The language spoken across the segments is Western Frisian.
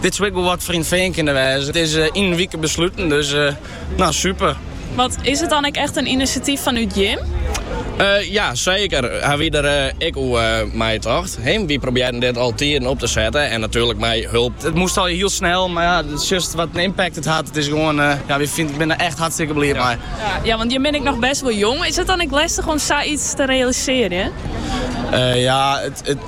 Dit soe ek wol wat foar yn It Fean kinne wêze. It is yn in wike besluten, dus no super. Want is it dan ek echt in inisjatyf fanút jim? Ja, seker. Ha wy der ek oer neitocht. Ehm, wy probearren dit al tiden op te setten en natuerlik mei hulp. It moast al hiel snel, mar ja, sjochst wat in impact it hat. It is gewoan, ja, wy binne der echt hartstikke bliid mei. Ja, want jim bin ek noch bêst wol jong. Is it dan ek lestich om sa iets te realisearjen? Ja, it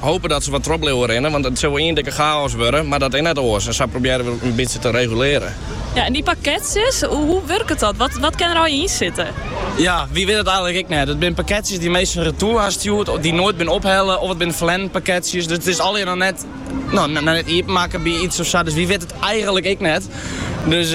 Hope dat se wat troch bliuwe rinne, want it sil ien dikke chaos wurde, mar dat is net oars en sa probearje we it in bytsje te regulearjen. Ja, en dy pakketsjes, hoe wurket dat? Wat, wat kin der al yn sitte? Ja, wy witte it eigenlik ek net. It binne pakketsjes dy't minsken retoer ha stjoerd, dy't noait binne ophelle of it binne ferlern pakketsjes. Dus it is allegear noch net, no, net iepenmakke by iets of sa, dus wy witte it eigenlik ek net. Dus.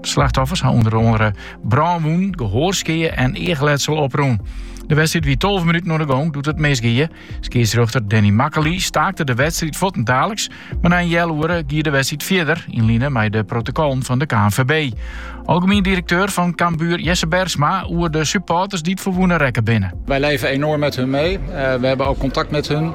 De slachtoffers ha ûnder oare brânwûnen, gehoarskeae en eachletsel oprûn. De wedstriid wie 12 minuten oan de gong doe't it misgie. Skiedsrjochter Danny Makkelie staakte de wedstriid fuortendaliks, mar nei in heal oere gie de wedstriid fierder yn line mei de protokollen fan de KNVB. Algemien direkteur fan Cambuur Jesse Bergsma oer de supporters dy't ferwûne rekke binne. Wij leven enorm met hun mee. Eh, we hebben ook contact met hun.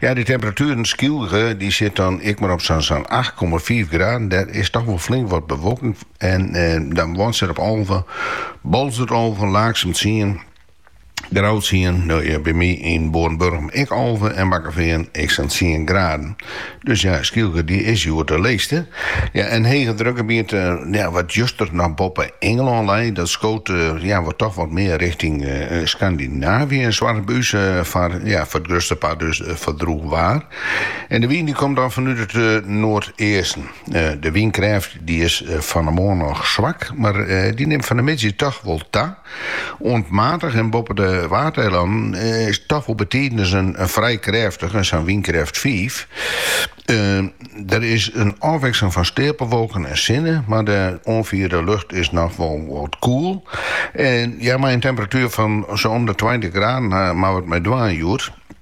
Ja, dy temperatueren Skylge dy sit dan ek mar op sa'n sa'n acht komma fiif graden. Der is toch wol flink wat bewolking en dan Wânswert op alve, Boalsert alve, Laaksum tsien, Grou tsien, no ja, by my yn Boarnburgum ek alve en Bakkefean ek sa'n tsien graden. Dus ja, Skylge dy is hjoed de leechste. Ja, in hegedrukgebiet ja, wat juster noch boppe Ingelân lei, dat skoot ja, wat toch wat mear richting Skandinavië en soarget by ús foar ja, foar it grutste part dus foar droech waar. En de wyn dy komt dan fanút it noardeasten. De wynkrêft dy is fan 'e moarn noch swak, mar dy nimt fan 'e middei toch wol ta. Oant matich en boppe de Waadeilannen is toch wol betiden ris in frij krêftige, sa'n wynkrêft fiif. Der is in ôfwikseling fan steapelwolken en sinne, mar de oanfierde lucht is noch wol wat koel. En ja, mei in temperatuer fan sa om de tweintich graden moatte we it mei dwaan hjoed.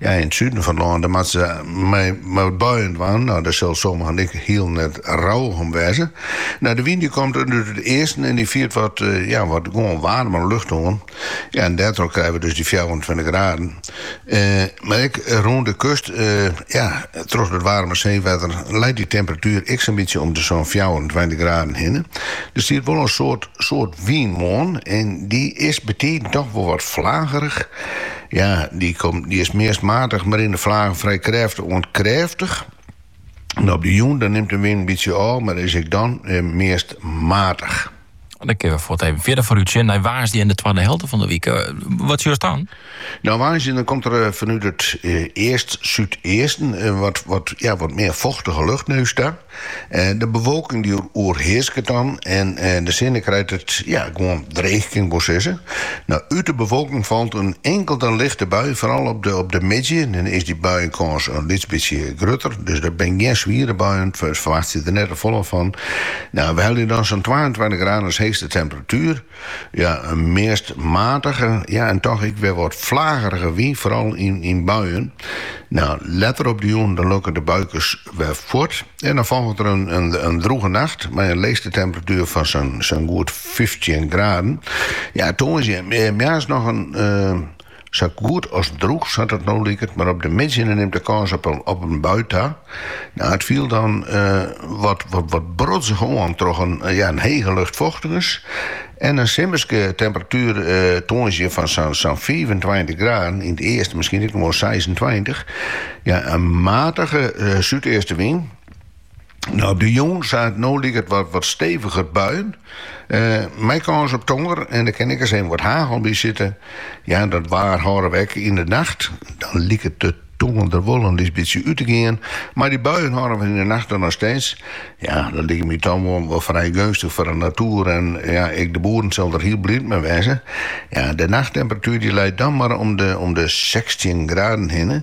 Ja, yn it suden fan it lân, dêr moatte se mei wat buien dwaan. No, dêr sille sommigen ek hiel net rouwich om wêze. No, de wyn dy komt út it easten en dy fiert wat, ja, wat gewoan waarmere lucht oan. Ja, en dêrtroch krije we dus dy fjouwerentweintich graden. Mar ek rûn de kust, ja, troch dat waarme seewetter leit dy temperatuer ek sa'n bytsje om de sa'n fjouwerentweintich graden hinne. Der stiet wol in soad wyn moarn en dy is betiden toch wol wat flagerich. Ja, dy is meast matich, mar yn de flagen frij krêftich oant krêftich. En op de jûn dan nimt de wyn in bytsje ôf, mar is ek dan meast matich. Dan kinne we fuort even fierder foarút sjen nei woansdei en de twadde helte fan de wyk. Eh, wat sjochst dan? Nou, woansdei dan komt er eh, fanút it eh, east-súdeasten eh, wat, wat, ja, wat mear fochtige lucht nei ús ta. De bewolking die oerhearsket dan en de sinne krijt it ja, gewoan dreech kin ik wol sizze. Nou, út de bewolking falt in inkelde lichte bui, foaral op de op de middei. Dan is dy buienkâns in lyts bytsje grutter, dus dat binne gjin swiere buien, ferwachtsje der net te folle fan. Nou, we helje dan sa'n twaentweintich graden as heechste temperatuer. Ja, in meast matige, ja en toch ek wer wat fleagerige wyn, foaral yn buien. Nou, letter op de jûn dan lûke de buikes wer fuort en dan folget der in drûge nacht mei in leechste temperatuer fan sa'n goed fyftjin graden. Ja, tongersdei moarns noch in. Sa goed as drûch, sa't it no liket, mar op de middei nei nimt de kâns op in bui ta. It fielt dan wat brodzich oan troch in hege luchtfochtigens en in simmerske temperatuer, tongersdei fan sa'n fiifentweintich graden, yn it easten miskien ek noch wol seisentweintich. In matige súdeastewyn. Op de jûn sa't it no liket wat steviger buien mei kâns op tonger en der kin ek ris even wat hagel by sitte. Ja, dat waar hâlde we ek yn de nacht. Dan liket de tonger der wol in lyts bytsje út te gean, mar dy buien hâlde we yn de nacht der noch steeds. Ja, dat liket my dan wol frij geunstich foar de natoer en ja, ek de boeren sille der hiel bliid mei wêze. Ja, de nachttemperatuer dy leit dan mar om de sechstjin graden hinne.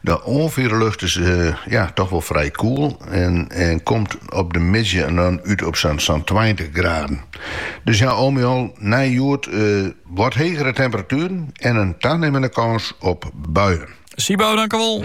De oanfierlucht is toch wol frij koel en komt op de middei dan út op sa'n tweintich graden. Dus ja, al mei al nei hjoed wat hegere temperatueren en in tanimmende kâns op buien. Sibau, dankjewol.